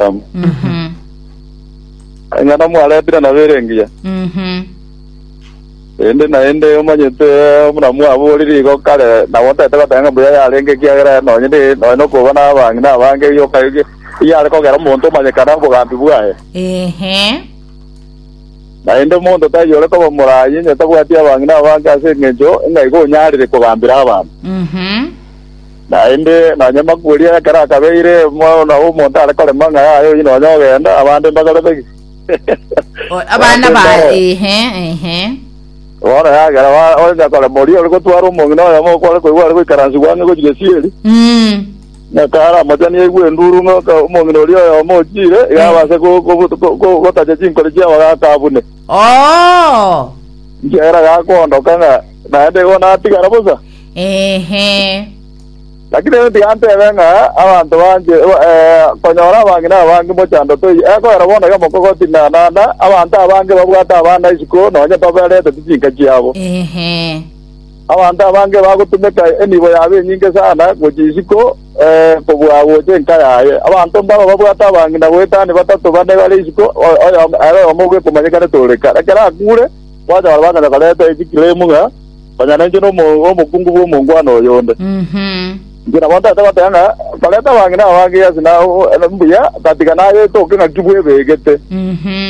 Adamu. Mhm. Eng'ana mwaretire nabo ere engiya. Mhm. Ende naende omanyete buna mwaborire igo kare nabo ntete goteba ng'a mbuya yarenge ekiagera nonye ne- nonye nokoba nabang'ina abange yoka ege- eyare kogera omonto omanyekane obogambi bwaye. Ehe. Naende omonto taiyo ore koba morayi onye tabwati abang'ina abange ase eng'encho ng'a igo onyarire kogambera abanto. Mhm. Naende nonya amakubo oria ekero akabeire Omwana omonto are korema ng'a yaye oyio nonya ogenda, abande mbakorete ki? O- abana ba Barende aro. ehe ehe Bono yagera ba- onya korema oria ore gotwara omong'ina oyomo okware koigwa are goikaransigwa ang'e gochia gesieri, Mm. ng'aka aramochanie aigwe enduru ng'aka omong'ina oria oyomo ochire, iga Mm. abase go- go- go- go- gotacha chinkori chiabo gaka abune. oo Nchiera gakoondoka ng'a naende igo natigara bosa. Eehee. Lakini rende tigantebe ng'a abanto banche eh, konyora abang'ina abange mochando toiyo, ekogera bono iga mokogoti na naenda, abanto abange babwate abana isiko, nonye babereteti chinka chiabo. Eehee. Abanto abange bagotumeka enibo yabo enyinge sana gochia isiko eh, kobua gocha enka yaye. Abanto mbaro babwate abang'ina goetania batato bane bare isiko, o- oyomo ere oyomo bw'ekomanyekanete ore kare. Ekero akure, kwanyora bagachaka koreta echikirimu ng'a Konya nainche nomokungu bw'omongwana oyonde. Inche nabo ntagete goteba ng'a barente abang'ina aba ba Gehasi na mbuya, gatiga nayetoke ng'aki bwebegete,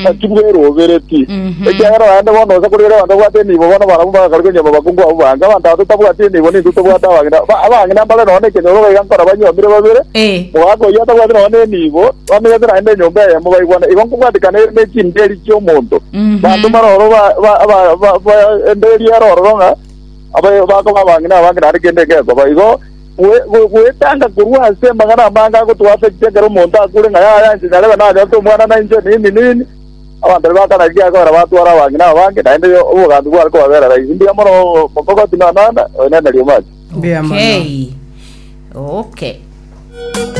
ng'aki bweroberetie, ekiagera naende bono onsi korigereria abanto babwate enibo bono barabwo mbagakare konyuoma abakungu abo bange. Abanto aba totabwati enibo nintwe tobwate abang'ina. Abang'ina mbare nonya nekenyoro iga nkora banyuomire babere, mogaka oyio atabwati nonya nenibo, bamenyete naende enyomba eyemo baigwane. Igo nkobwatikana ere ne chimbeeri chi'omonto. Abanto mbare ororo baendererie ere ororo ng'a bakoba abang'ina abange naende kende gekoba igo. Goetanga korwa ase amang'ana amange agotwaafecti ekero omonto akure ng'a yaya inche nyarebe nanyorete omwana na inche nini nini. Abanto baria bakana riria riakogera batwara abang'ina abange naende obogambi bware kobabera raisi. Mbuya mono mogogoti na Nana, oenene riomati. Okay.